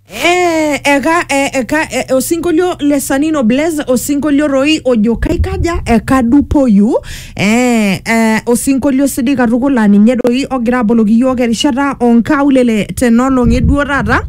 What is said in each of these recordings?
Eh, eka eh, eka eh, osinkolio le sanino blaze osinkolio roi ojo kaikaja ekadupoyu eh, eh, osinkolio sidai katukul laa ninye doi ogira aboloki iyiook erishata onkaulele tenolong'i duo taata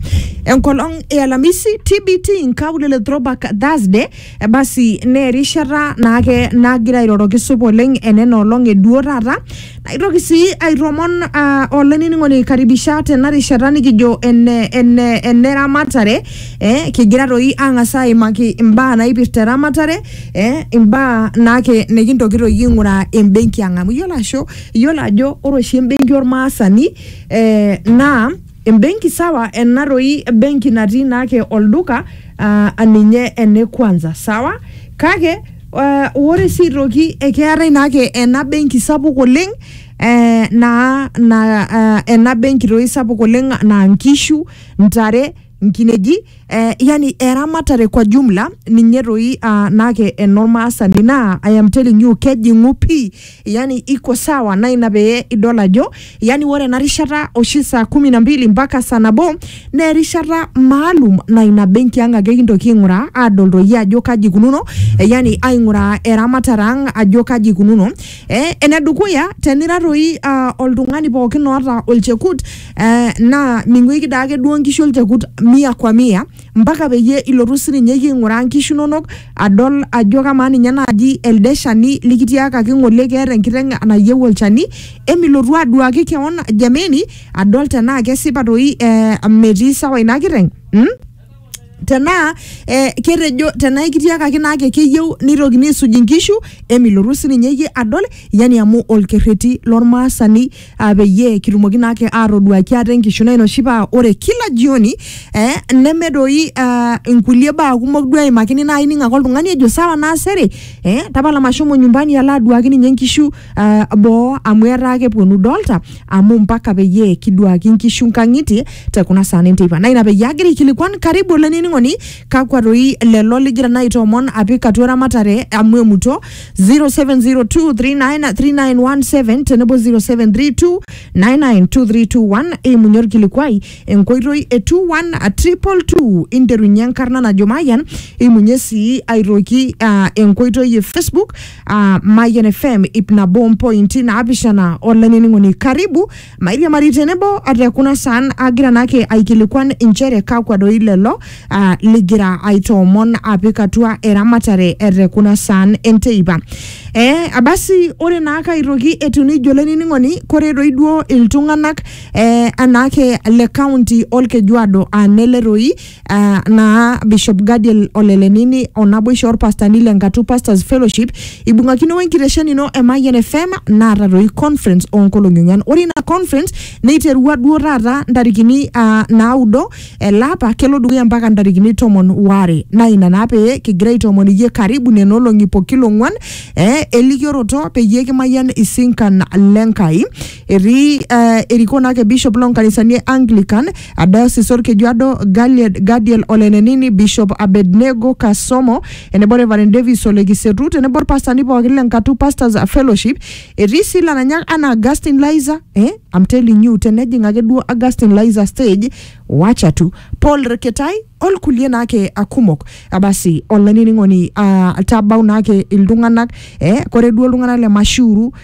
enkolong e alamisi tbt nkaulele throwback thursday Ebasi naa erishata naake nagira airoroki supa oleng enena olong e duo taata naitoki sii aitomon uh, olainining'oni aikaribisha tena rishata nikijo ene, ene, ene ramatare eh, kigira toi ang'as aimaki imbaa naipirta eramatare eh, imbaa naake nikintoki toi aing'uraa embenki ang amu iyiolo asho iyiolo ajo ore oshi embenki ormaasani eh, naa Embenki sawa ena doi benki natii naake olduka uh, aninye ene kwanza sawa kake uh, ore sii aitoki ekeetae naake ena benki sapuk oleng eh, naa na, uh, ena benki toi sapuk oleng naa nkishu ntare nkineji eh, yani eramatare kwa jumla ninye toi uh, naake enormaasani naa I am telling you kejing'u pii yani iko sawa na ina pee idol ajo yani ore ena rishata oshi saa kumi na mbili mpaka saa nabo naa erishata maalum na ina benki ang ake kintoki aing'uraa aadol toi ajo kaji ikununo eh, yani aing'uraa eramatare ang ajo kaji ikununo eh, enedukuya tenira toi ah, oltung'ani pookin oota olchekut eh, naa ming'uiki daake duo nkishu olchekut mia kwa mia mpaka peyie ilotu sininye iyie aing'uraa nkishu inonok adol ajo kamaa ninye naaji elde shani likitiakaki ng'ole keeta enkiteng nayieu olchani emilotu aduaki kewon jameni adol tenaa kesipa toi eh, metii sawa ina kiteng mm? tenaa eh, ketejo tenaa ekitiakaki naake keyieu nitokini aisuj inkishu emilotu sininye iyie adol yani amu olkerreti lormaasani ah, peyie kitumoki naake atoduaki ate enkishu naa ina oshi paa ore kila jioni eh, neme doi ah, inkulie baa kumok duo eimakini naa ining ake oltung'ani ejo sawa naasere eh, tapala mashomo nyumbani alo aduaki ninye inkishu ah, boo amu etaa keponu idolta amu mpaka peyie kiduaki inkishu nkang'itie te kuna saa enteipa naa ina peyie agira aikilikuan karibu olainining'oni kakwa toi lelo ligira naa aitoomon apik atua eramatare amu emuto 0702393917 tenebo 0732992321 eimunye orkilikuai enkoitoi e 21222 interunye enkarna najo Mayian eimunye sii aitoki ah, enkoitoi e Facebook ah, Mayian FM ip nabo mpointi naapishana olainining'oni karibu Mairiamari tenebo o te kuna saan agira naake aikilikuan inchere kakwa doi lelo ah, ligira aitoomon apik atua eramatare e te kuna saan enteipa. Eh, abasi ore naake aitoki etiu nijo olainining'oni kore doi duo iltung'anak eh, anaake le kaunti olkejuado aa nele toi Uh, naa Bishop Gadiel Olelenini o naboisho orpastani le Ngatu Pastors Fellowship ibung'akino wenkitesheni ino e Mayian FM naata doi conference oonkolong'i ong'wan. Ore ina conference neiterua duo taata ntarikini uh, naudo ele apa kelo dukuya mpaka ntarikini tomon waare. Naa ina naa pee kigira aitoomon iyie karibu nena olong'i pokila ong'wan eh, elikioroto peyie kimayian isinkan le Nkai. etii eh, erikoo naake bishop loo nkanisani e Anglican a diocese Olkejuado Galied- Gadiel Olenenini bishop Abednego Kasomo enebo Reverend Davis Ole Kisetu tenebo olpastani pookin le Nkatu Pastors Fellowship etii sii lananyak anaa Augustine Liza eh, I'm telling you tenejing ake duo Augustine Liza stage wacha tu Paul Reketai olkulie naake ah, kumok Ah, basi olainining'oni ah, tabau naake iltung'anak eh, kore duo iltung'anak le Mashuru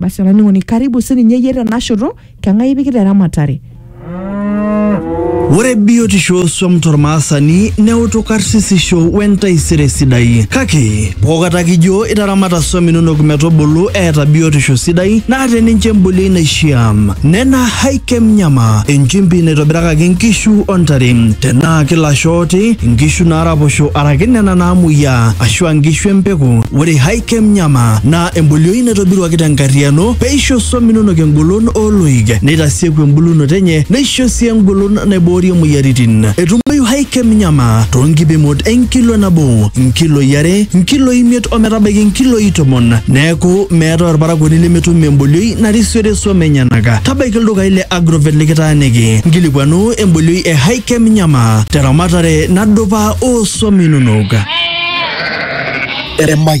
basi olainining'oni karibu sininye iyie tenashoto keng'ae ipikita eramatare Ore biotisho osuam tormaasani neutu karsisisho wentaisere sidai. Kake, pookata kijo itaramata suam inonok metubulu eeta biotisho sidai naata ninche embolioi naishiaa. Nena Haikem Nyama, enchimpi naitobirakaki nkishu o ntare. Tenaa kilasho ooti, nkishu naaraposho araki nena naamuoyiaa ashua nkishu empeku, ore Haikem Nyama naa embolioi naitobiruaki tenkarriano peisho swam inonok engolon ooloik neitasieku embulunoto enye neisho sii engolon naiboorie moyiaritin. Etumoyu High-Chem Nyama toonkipimot enkilo nabo, nkiloi are, nkiloi imiet o metabaiki nkiloi tomon. Neaku, meetae olparakuoni lemetum embolioi narisiore swam enyenak. Tabaiki ildukai le Agrovet likitaaniki nkilikuanu embolioi e High-Chem Nyama teramatare nadupa oo swam inonok. Emayian.